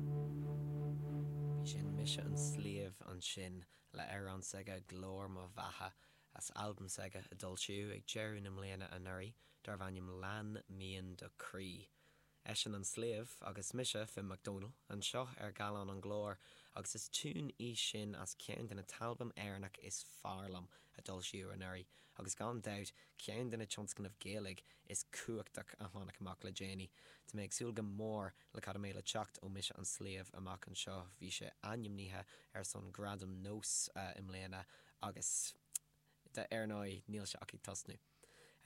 B'í sin Mise an Sliabh ansin le amhrán s'aige Glór mo Bheatha as albam s'aige a d'fhoilsíodh ag deireadh na mbliana anuraidh darbh ainm Lean Mian do Chroí. Eisean an sliabh agus mise, Finn McDonnell, anseo ar Gallán an Glóir agus is tiún í sin as ceann de na t-albam Éireannach is fearr liom a d'fhoilsíodh anuraidh agus gan dabht ceann de na tionscnaimh Gaeilge is cumhachtach a tháinig amach le déanaí. Tá mé ag súil go mór Le cad a mbeidh le teacht ó Mise an Sliabh amach anseo, bhí sé ainmnithe ar son Gradam NÓS i mbliana agus ar ndóigh níl sé ach ag tosnú.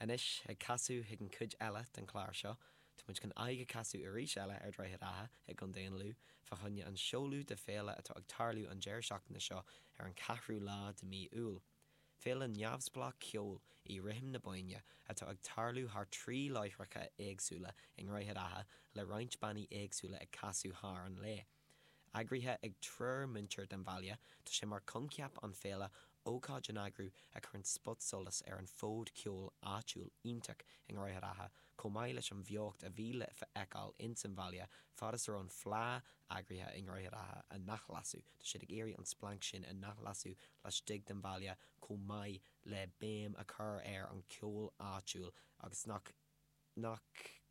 Anois, ag casadh chuig an cuid eile den chlár seo, tá muid chun aghaidh a casadh arís eile ar Droichead Átha i gContae an Lú fá choinne an seoladh de féile atá ag tarlú an deireadh seachtaine seo ar an 4ú lá de mí Iúil. Féile neamhspleách ceoil í Rithim na Bóinne atá ag tarlú thar trí láithreacha éagsúla i nDroichead Átha le roinnt bannaí éagsúla ag casadh thar an lae. Eagraithe ag triúr muintir den bhaile, tá sé mar coincheap an féile ócáid a n-eagrú a chuireann spotsolas ar an fód ceoil áitiúil iontach i nDroichead Átha chomh maith leis an bheocht a bhí le feiceáil ins an bhaile fad is a raibh an Fleá eagraithe i nDroichead Átha a n-athlasadh. Tá siad ag iarraidh an splanc sin a n-athlasadh laistigh den bhaile chomh maith le béim a chur ar an cheol áitiúil agus nach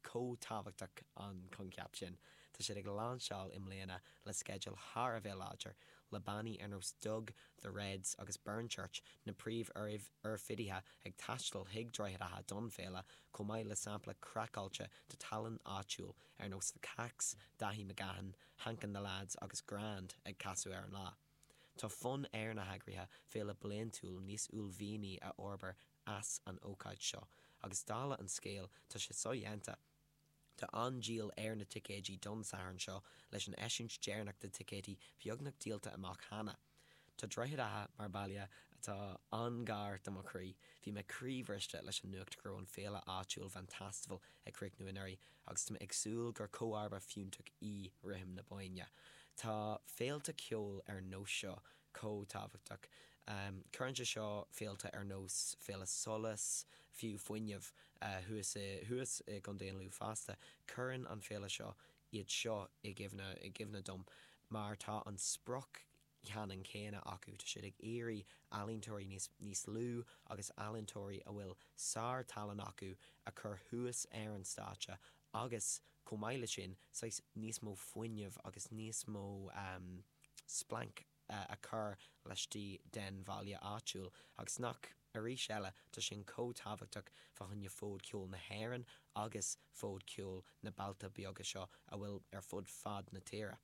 chomh tábhachtach an coincheap sin. Tá siad ag lainseáil i mbliana le sceideal thar a bheith láidir, le bannaí ar nós Dug, The Reds agus Burnchurch, na príomh-oirfidithe, ag taisteal chuig Droichead Átha don féile chomh maith le sampla craiceáilte de tallann áitiúil ar nós The Kacks, Daithí McGahan, Hank and the Lads agus Grand ag casadh ar an lá. Tá fonn ar na heagraithe féile bliaintiúil níos uaillmhianaí a fhorbair as an ócáid seo, agus dála an scéil, tá sé so-dhéanta. Tá an-díol ar na ticéidí don Satharn seo, leis an eisiúint deireanach de ticéidí beagnach díolta amach cheana. Tá Droichead Átha mar baile atá an-ghar do mo chroí. Bhí mé croíbhriste leis an nuacht go raibh an féile áitiúil Vantastival ag críochnú anuraidh agus tá mé ag súil gur comharba fiúntach í Rithim na Bóinne. Tá féilte ceoil ar nós seo chomh tábhachtach. Cuireann sé seo féilte ar nós Féile Solas, fiú Fuinneamh, thuas i gContae an Lú fosta. Cuireann an féile seo iad seo i gcuimhne dom mar tá an sprioc cheannann céanna acu, tá siad ag iarraidh ealaíontóirí níos lú agus ealaíontóirí a bhfuil sár-tallann acu a chur thuas ar an stáitse agus, chomh maith leis sin, saghas níos mó fuinneamh agus níos mó splanc. a chur laistigh den bhaile áitiúil, agus nach, arís eile, tá sin chomh tábhachtach fá choinne fód ceoil na hÉireann agus fód ceoil na mbailte beaga seo a bhfuil ar fud fad na tíre.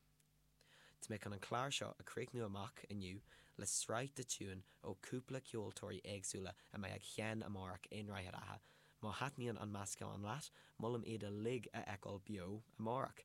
Tá mé chun an clár seo a chríochnú amach inniu le sraith de tiúin ó chúpla ceoltóirí éagsúla a mbeidh ag seinm amárach i nDroichead Átha. Má thaitníonn an meascán leat, molaim iad uilig a fheiceáil beo amárach.